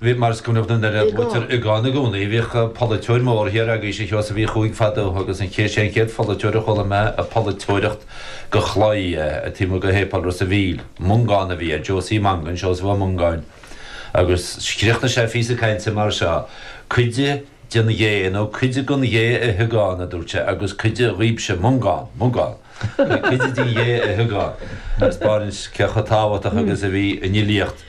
Bhí mar is cuimhneach na nDoire luaitear an t-iogán i gcónaí, Bhíodh polaiteoir mór thiar agaibhse a Sheosaimh Uí Chuaig fadó agus an chéad sé an chéad pholaiteoir a chuala mé ag polaiteoireacht de chlaí taobh amuigh de Shéipéal Ros a' Mhíl. Mongán a bhí air, Josie Mongan, Seosamh Ó Mongáin, agus chríochnaigh sé a phíosa cainte mar seo, Cuid den ghé nó cuid den ghé a hiogán, a dúirt sé, agus cuid dhaoibhse, Mongán, Mongán, cuid den ghé a hiogán, agus spáineann sé chomh tábhachtach agus a bhí an fhilíocht.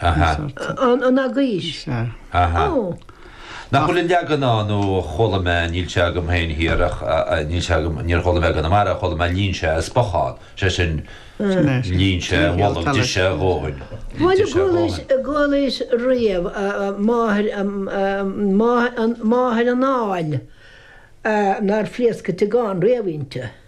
Aha. An eagaois? Aha. Oh. Nach bhfuil an leagan ann nó chuala mé, níl sé agam féin thiar ach níl sé agam, níor chuala mé i gConamara, chuala mé líon sé a spochán, sé sin líon sé a bholg, d'ith sé a dhóthain. Bhuel, chualaís, chualaís riamh máthair, máthair an áil nár phléasc an t-iogán riamh inti.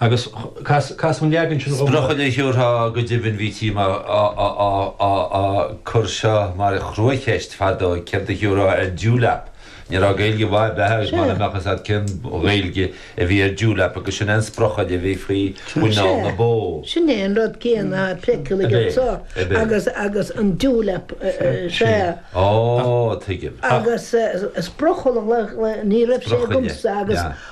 Agus casadh an leagan sin dhom go. Sprochaille a thiúrfá go deimhin bhítí á chur seo mar chruacheist fadó, céard a thiúrfá ar Dewlap? Ní raibh Gaeilge mhaith ar bith agat mara mbeadh a fhios agat cén Ghaeilge a bhí ar Dewlap agus sin é an sprochaille a bhí faoi mhuineál na bó. Sin é an rud céanna a phléitear aige so agus an Dewlap sé. Ó, tuigim. Agus sprochaille, ní raibh sé agamsa agus